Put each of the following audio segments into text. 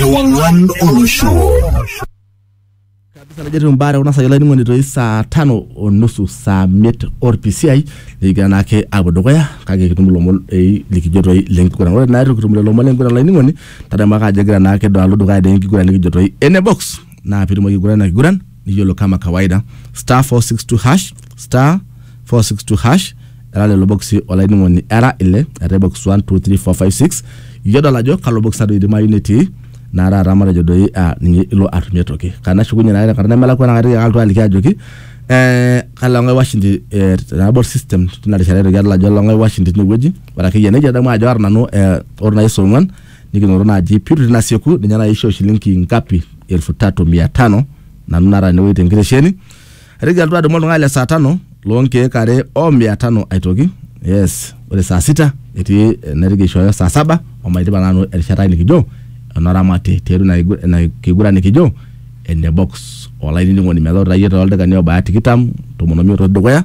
Ewang'an olosho. kabisa najo etiu mbaa tekuna saai olainining'oni toi saa tano o nusu saa miet orpisiai nikigira naake apuo dukuya kake kitum ilomon ei likijo toi lenkiguran ore naa itu kitum lelo omon lenkiguran olainining'oni tadamu ake ajo egira naake do alo dukuya dee enkiguran nikijo toi ene box naa piitumoki aigurana ina kiguran niyiolo kama kawaida star 462 hash star 462 hash era lelo boksi olainining'oni era ile eetae box 1 2 3 4 5 6 iyie odol ajo kalo box nado idimayu netii naa taata matejo doi ah, ninye ilo atumie toki kanashukunye naa tenkata nemelakua naa kaitoki ake alotu aliki ajoki eh, kalo ng'ae washindi eh, tenabol system tina rishata aitoki adol ajo olong'ae washindi tinewueji ore akeyie nejia adamu ajo aata nanu eh, ore nai saa ong'uan nikinoto naaji pitu tinasieku ninye naaji aishoo shilingi ngapi elfu tatu mia tano nanu nara enewueji tenkitesheni aitoki alotu adumu oltung'ani le saa tano loonkeek are o mia tano aitoki yes ore saa sita etii eh, naitoki aishooyo saa saba omaidipa nanu erishata ai nikijo enoramati tiatua ina kigu- ina kiguran nikijo ene box olainining'oni metaa ore iyie tooldakikani obaya tikitam tomon omiet otii dukuya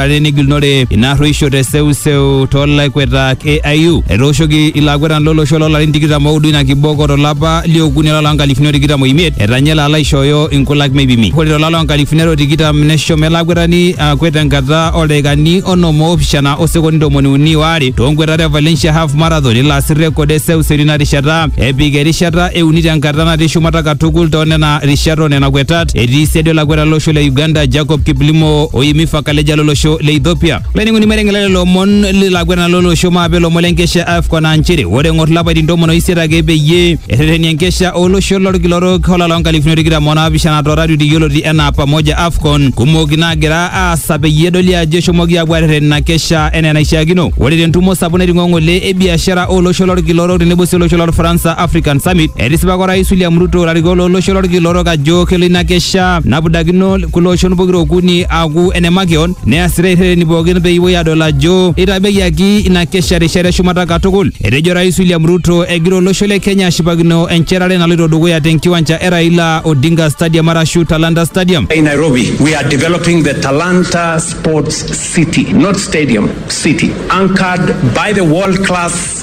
are negilunore ina arruisho te seuseu toolaikwetak e AU. Etooshoki ilo akwetani lolosho loolarin tikitam oudo ina kiboko tolapa liokuni olapa loo nkalifuni o tikitam oimiet etanya elo alo aishooyo inkulak meipimi. Ore tolapa loo nkalifuni are o tikitam neshomo ele akwetani akwet tenkata oo ldaikani onom oopishana o sekondi ntomoni uni o are too nkwetat e Valencia Half Marathon elo asir rekod e seuseu tina rishata epik erishata e uni tenkata natii shumata katukul too nena rishat o nena kwetat. etii siadi olakweta lolosho le Uganda Jacob Kiplimo oimi Fakaleja lolosho le Ethiopia. Laining'oni mereng'ela lelo omon lilakwena lolosho maape ilomon lenkesha AFCON aa nchere ore eng'or lapaitin tomon oisiet ake peyie erreteni enkesha olosho lorkila orok olala onkalifuni tikitam onaapishana to ratioti yioloti enaa Pamoja AFCON kumok naagira aasa peyie edoli ajo eshomoki aapuo arreten ina kesha enaa enaishiakino. Ore tentumo sapuk naiting'o ng'ole e biashara olosho lorkila orok tenebo sii olosho lolfaransa African Summit Etisipaka Orais William Ruto larikok lolosho lorkila orok ajo kelo ina kesha napudakino kulo oshon pokira okuni aaku ene makeon neasitae irreteni pookin pee epuoi adol ajo eitabayiaki ina kesha rishata eshumata katukul. Etejo Orais William Ruto egira olosho le Kenya ashipakino enchetare naloito dukuya te nkiwanja e Raila Odinga Stadium arashu Talanta Stadium. In Nairobi, we are developing the Talanta Sports City, not stadium, city, anchored by the world class